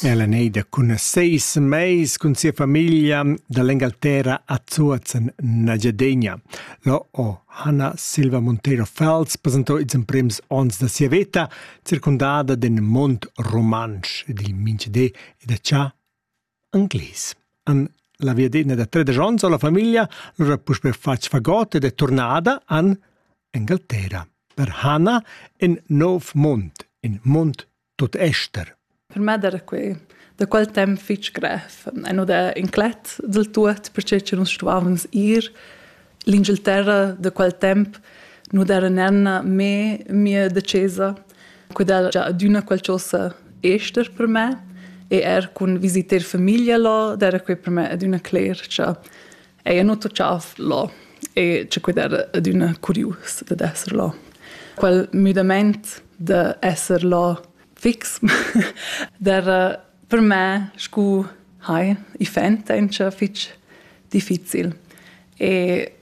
Ella ei da cun seis meis cun sia famiglia dall'Engalterra a Zuozen Nagyadegna. Lo ho Hanna Silva Monteiro Fels presentau ils emprems ons da sia veta, circondada d'in mond romansch ed il minchedé e da cha Anglies. An la viadena da tredesch onns ho la famiglia lura puspè fatg fagot ed è turnada an Engalterra per Hana en Nov Mond, in mond tot ester. Per me era quei da quel temp fitg grev e no da inclet del tut, perché che nus stuavans ir L'Inghilterra da quel temp nu d'era nenna me mia decesa, quella già adüna qualchosa ester per me e er cun visiter famiglia là, d'era quei per me adüna cler cha ella nu toccav là e che quel era adüna curius dad esser là. Quel müdament da esser là fix d'era Per me, scu hai, i fent auncha fich difficil. E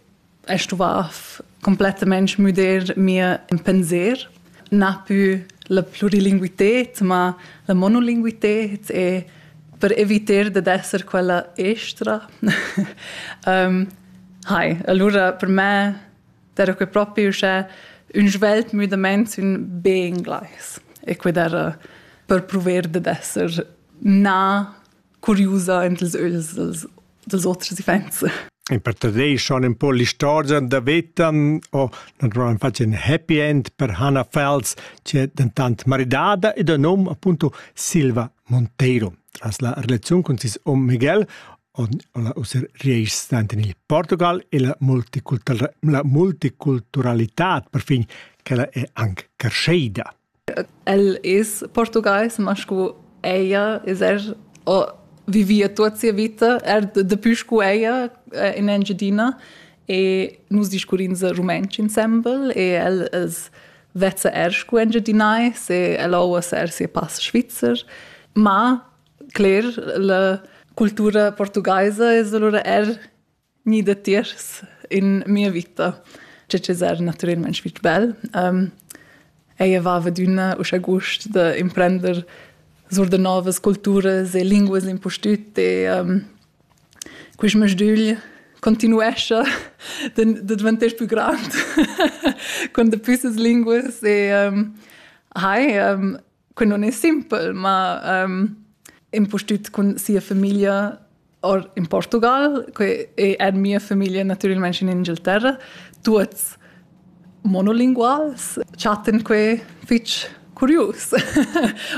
è stuvà completamente müder mia pensier. Na più la plurilinguited, ma la monolinguited e per eviter dad esser quella estra. um, hai, allora per me Era que propi uschè ün svelt müdamaint sün be inglais. E que d'era per prover dad esser na curiusa ent els öls dels, dels oters events. E per tadei schon un po l'istorgia da Vetan o naturalment faci un happy end per Hannah Fels, c'è dentant maridada ed o nom appunto Silva Monteiro. Tras la relazione con sis om Miguel ussa reis in Portugal e la, la multiculturalità perfin quella è anche crescida. El is portugais, ma scu ella is er o vivia tut sia vita, er depuis scu ella eh, in Engiadina e nus discurrins rumantsch insembel e el es vezza er scu Engiadinais e el oua ser sia pass svizzer, ma Cler, la cultura portugaisa es alura eir gnida tiers in mia vita. Che es eir natüralmaing fich bel. Eir vaiva adüna uschè gust da imprender sur da novas culturas e linguas l'impustüt e quist masdügl continuescha da dvantar pü grand con daplü las linguas e hai Que non è simpel, ma um, impustüt cun sia famiglia or in Portugal, que è er mia famiglia natüralment in Inghilterra, tuots monolinguals, chattan que fich curius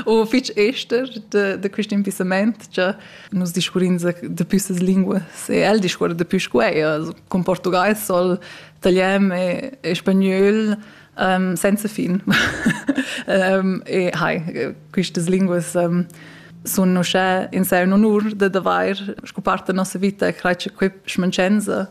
o fich ester de, de quist impissament cha nus discurrins de püssas linguas e el discuorra de püs cu eir. Cun portugais soll italian e, e spagnöl um, senza fin. um, e hai, quistas linguas um, sun uschè in se un onur da d'avair sco part da nossa vita crai che quei schmancenza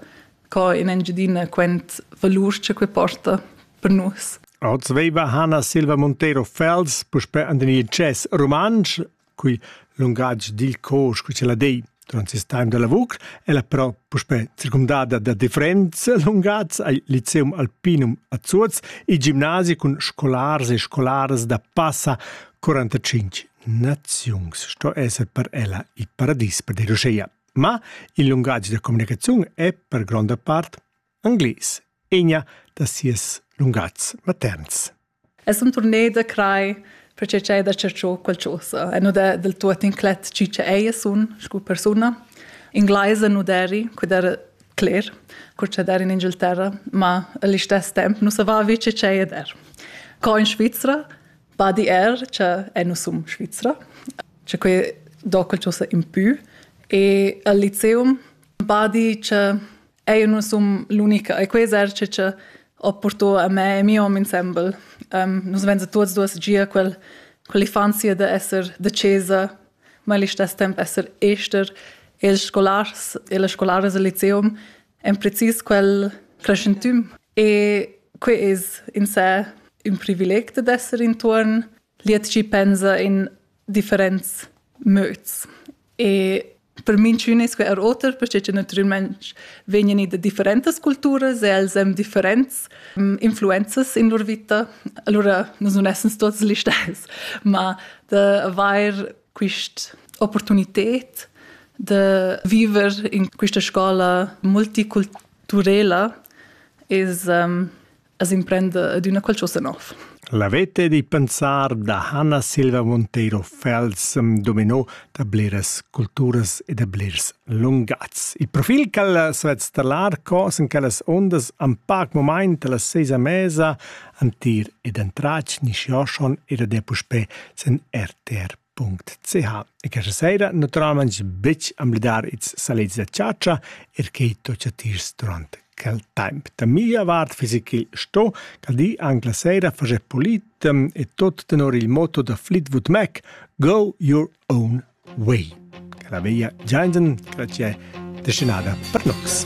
co in Engiadina quent valur che quei porta per nus. Oz veiva Hanna Silva Montero Fels, puspè an den Jazz Romansch, Cui lungatg dil cor, scu la dei durant ses time da lavur, ella però puspè circumdada da differents lungatgs al Lyceum Alpinum a Zuoz, il gimnasi cun scolars e scolaras da passa 45 naziuns. Sto esser per ella il paradis per de Roseia. Ma il lungatg da comunicaziun è per gronda part Anglais, egna da sias lungats materns. Es un tournée da crai perché c'è da cerchar qualcosa e nu da del tuot inclet chi cha ella sun scu persuna. Inglaisa nu deri, quid era cler, cur cha der in Inghilterra, ma all'istes temp nu savà vi che c'è der. Co in Svizzera, badi er che e nu sum Svizzera, che que do qualcosa in più e al liceum badi che Ei nu sun l'unica, e quei eserci che ho portò a me e mio hom insembel. Um, nus vain tuots duos gia quel, quell'infanzia da esser da chesa, ma allo stesso tempo esser ester e ils scolars e le scolares al liceum en precis quel crescentüm. E quei es in sé ün privileg da esser intuorn. Liet chi pensa in differents möds. E per minchün es que er oter, perche che natüralmaing vegnan da differentas culturas e els haben differents um, influenzas in lur vita. Allora nus nun essens tuots gli stess, ma da avair quist opportunited de viver in questa scola multiculturela is um, as imprenda adüna qualchosa nouv. L'avete di pensar da Hanna Silva Monteiro Fels dominò da bleras culturas e da blers lungats. Il profil ch'ella s'ha installar cos in quellas ondas an pac moment alla seisa mesa antir ed entrach ni Xiaoshon era de puspè sen RTR .ch e questa sera naturalmente betg amblidar its salits da chatscha er che to chattís durant quel temp. Da mia vart fisi ch'il sto cal di anc la sera fager polit e tot tenor il motto da Fleetwood Mac Go your own way. Che la veia Giangen, grazie, destinada per nox.